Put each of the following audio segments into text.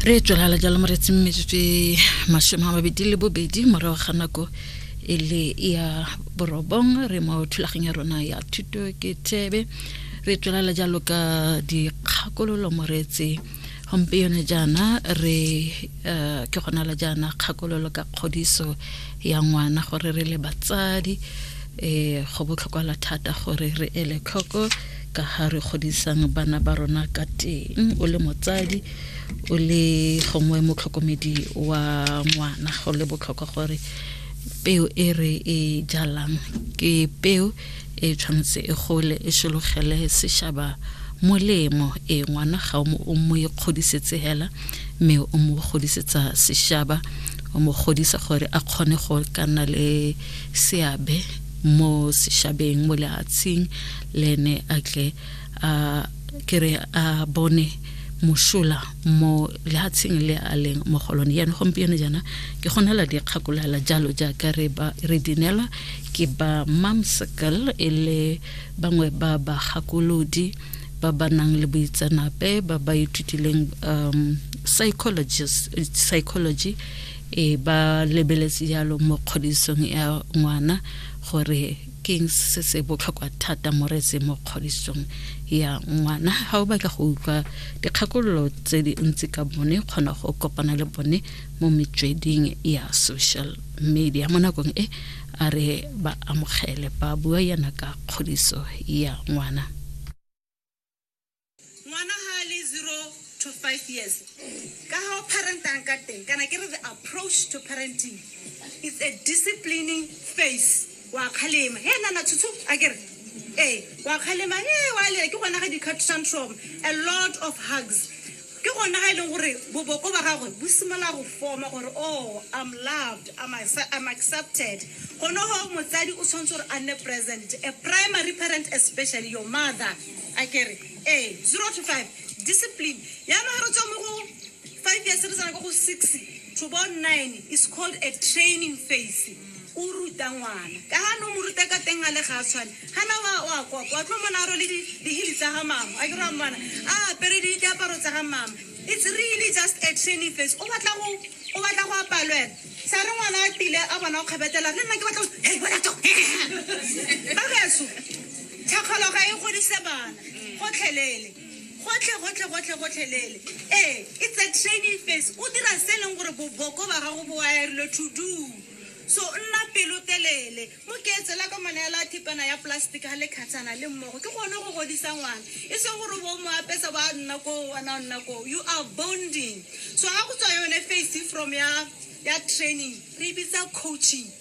re tswelala jalo moretseng metsotso e masome a mabedi le bobedi morago ga nako e le ya borobong re mo thulaganya rona ya thuto ke tebe re tswelala jalo ka dikgakololo moretse gompieno jaana re eh, ke gona la jaana kgakololo ka kgodiso ya ngwana gore re le batsadi um go botlhokwala thata gore re ele tlhoko ka ha re godisang bana ba rona ka teng o le motsadi o le gongwe motlhokomedi wa ngwana go le botlhokwa gore peo e re e jalang ke peo e tshwanetse e gole e sologele sešaba molemo e ngwana ga o mo ikgodisetsa e hela mme o mo godisetsa sešaba o mo godisa gore a kgone go ka nna le seabe mo sešabeng mo lehatsheng le ene a tle a kere a bone mosola mo lehatsheng le a leng mo go lone yaanong gompieno jaana ke go nela dikgakolala jalo jaaka re ba re dinelwa ke ba mamscal e le bangwe ba bagakolodi ba ba nang le boitseanape ba ba ithutileng um psychologist psychology e ba lebeletse jalo mo kgodisong ya ngwana gore keng se se botlhokwa thata mo retse mo kgodisong ya ngwana ga o batla go utlwa dikgakololo tse di ntsi ka bone kgona go kopana le bone mo metsweding ya social media mo nakong e a re ba amogele ba bua yana ka kgodiso ya ngwana ngwana ga a le zero to five years ka ga o parentang ka teng kana ke re the approach to parenting is a disciplining face wa kgalema he nana tshutshu a kere ee wa kgalema e wa lela ke gona ga di-cut tantrum a lot of hugs Ke gone ga e leng gore boboko ba gagwe bo simolola go forma gore oh I'm loved, I'm, I'm accepted. Gone go motsadi o tshwanetse gore a nne present, a primary parent especially your mother. A kere ee, zero to five discipline. Yana ga re tswa mo go five years re tsena ka go six to about nine is called a training phase. o ruta ngwana ka ga no mo ruta ka teng a le ga a tshwane gana wa wa kwa kwa tlo mona a role dihili tsa ga mama a ke ra mmana a apere di diaparo tsa ga mama it's really just a training face o batla go o batla go apalwela sa re ngwana a tile a bona o kgabetela le nna ke batla hey bona to ba beso thakgologa e godise bana gotlhelele Gotlhe, gotlhe, gotlhe, gotlhelele. Ee, it's a training phase. O dira se e leng gore boboko ba gago bo wirilwe to do. So nna pelotelele. Mo ke etsela ka mo neela thepana ya plastic ga le kgatshana le mmogo. Ke gone go godisa ngwana. E seng gore o bo o mo apesa ba nna koo, wena o nna koo. You are bonding. So ga go tswa yone phase from ya ya training, re e bitsa coaching.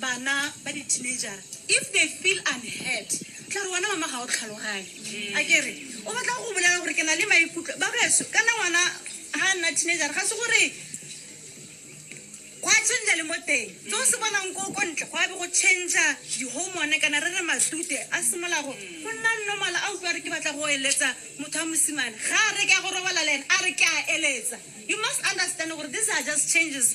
Bana ba di teenagera if they feel unheard tla re wena mama ga o tlhaloganye a kere o batla go bolela gore ke na le maikutlo ba beso kana ngwana ga nna teenagera ga se gore go a change le mo teng tse o se bonang ko ko ntle go a be go change di-hormone kana re re matute a simolola go go nna normal a utlwa re ke batla go eletsa motho wa mosimane ga a re ke ya go robala le ene a re ke a eletsa you must understand gore these are just changes